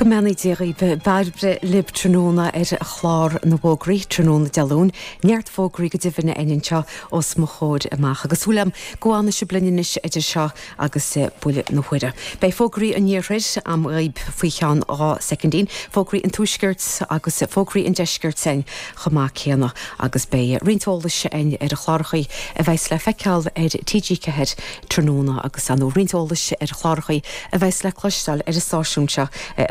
Go mbeannaí Dia dhaoibh. Bairbre libh tráthnóna ar chlár na bhfógraí, tráthnóna Dé Luain. Neart fógraí go deimhin aríst a'inn anseo os mo chomhair amach, agus súil agam go bhfanfaidh sibh linn anois idir seo agus buille na huaire. Beidh fógraí an Iarthair a'm dhaoibh faoi cheann dhá soicindín, fógraí an Tuaiscirt agus fógraí an Deiscirt a'inn chomh maith céanna, agus beidh roinnt eolais a'inn ar chlárachaí a bheas le feiceáil ar TG4 tráthnóna agus ar ndóigh roinnt eolais ar chlárachaí a bheas le cloisteáil ar an stáisiún seo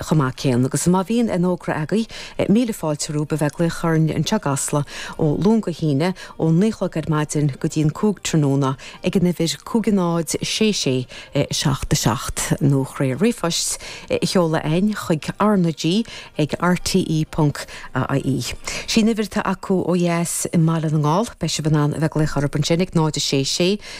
chomh maith céanna agus má bhíonn aon fhógra agaibh míle fáilte romhaibh a bheith glaoch orainn anseo i gCasla ó Luan go hAoine ó naoi a chlog ar maidin go dtí an cúig tráthnóna ag an uimhir 5066 77 nó trí ríomhphost a sheoladh againn chuig R na G ag rte ponc ie. Sí an uimhir atá acu ó dheas i mBaile na nGall. Beidh sibh in ann a bheith glaoch orthub ansin ag 0 6 6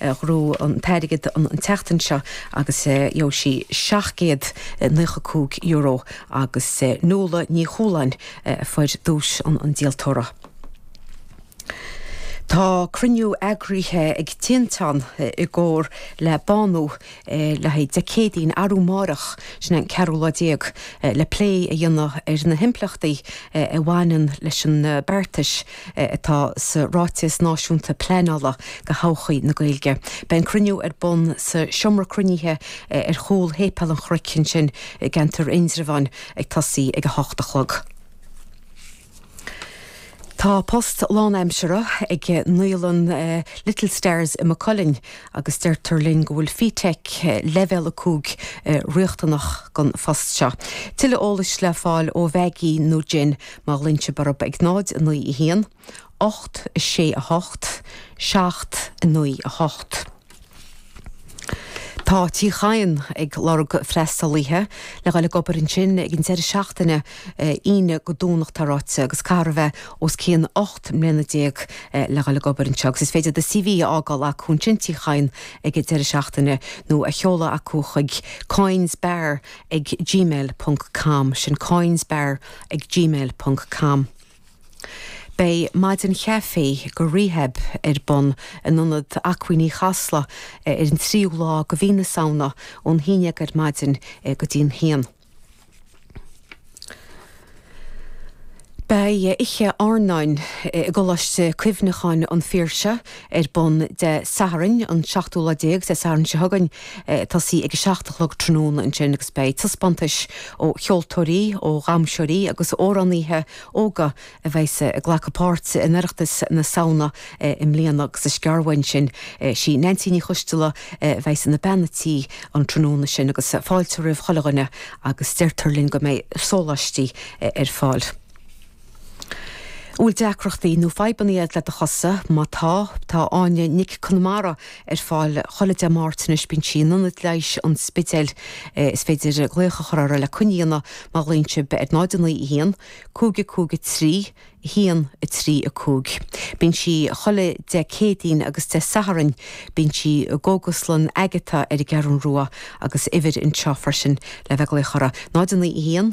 Ghnóthaigh an t-airgead an tseachtain seo agus gheobhaidh sí €795 agus Nuala Ní Chualáin a fuair duais an díoltóra. Tá cruinniú eagraithe ag Tinteán i gcomhar le Bánú le haghaidh Dé Céadaoin, arú márach, sin é an ceathrú lá déag, le plé a dhéanamh ar na himpleachtaí a bhaineann leis an beartas atá sa Ráiteas Náisiúnta Pleanála do thodhchaí na Gaeilge. Beidh an cruinniú ar bun sa seomra cruinnithe ar chúl Shéipéal an Chnoic ansin i gceantar Indreabháin ag tosaí ag a hocht a chlog. Tá post lánaimseartha ag naíolann Little Stars i Maigh Cuilinn agus deirtear linn go bhfuil FETAC Leibhéal 5 riachtanach don phost seo. Tuilleadh eolais le fáil ó Mhaggie nó Jen má ghlaonn sibh orthu ag 091 868 798. Tá Tigh Chadhain ag lorg freastalaithe le dhul ag obair ansin ag an deireadh seachtaine, Aoine go Domhnach tá ráite, agus caithfear a bheith os cionn 18 mbliana le dhul ag obair anseo. Agus is féidir do CV a fhágáil acu ansin, Tigh Chadhain ag an deireadh seachtaine, nó a sheoladh acu chuig, coynesbar ag gmail ponc com, sin coynesbar ag gmail ponc com. Beidh maidin chaife go Rehab ar bun in ionad acmhainní Chasla ar an tríú lá de mhí na Samhna, ón haon déag ar maidin go dtí an haon. Beidh oíche airneáin i gColáiste Cuimhneacháin an Phiarsaigh ar bun Dé Sathairn, an seachtú lá déag, Dé Sathairn seo chugainn, ag tosaí ag a seacht a chlog tráthnóna ansin agus beidh taispeántais ó cheoltóirí, ó dhamhsóirí agus ó amhránaíthe óga a bheas ag glacadh páirt in Oireachtas na Samhna i mbliana agus is gearr uainn sin. Sí Neansaí Ní Choisdealbha a bheas ina bean an tí an tráthnóna sin agus fáilte roimh chuile dhuine agus deirtear linn go mbeidh sóláistí ar fáil. An bhfuil deacrachtaí nó fadhbanna agat le do chosa? Má tá, tá Áine Nic Conamara ar fáil chuile Dé Máirt anois. Bíonn sí in Ionad Leighis an Spidéil. Is féidir glaoch a chur uirthi le coinne a dhéanamh má ghlaonn sibh ar 091 553 135. Bíonn sí chuile Dé Céadaoin agus Dé Sathairn. Bíonn sí i gCógaslann Agata ar an gCeathrún Rua agus uimhir anseo freisin le bheith ag glaoch uirthi, 091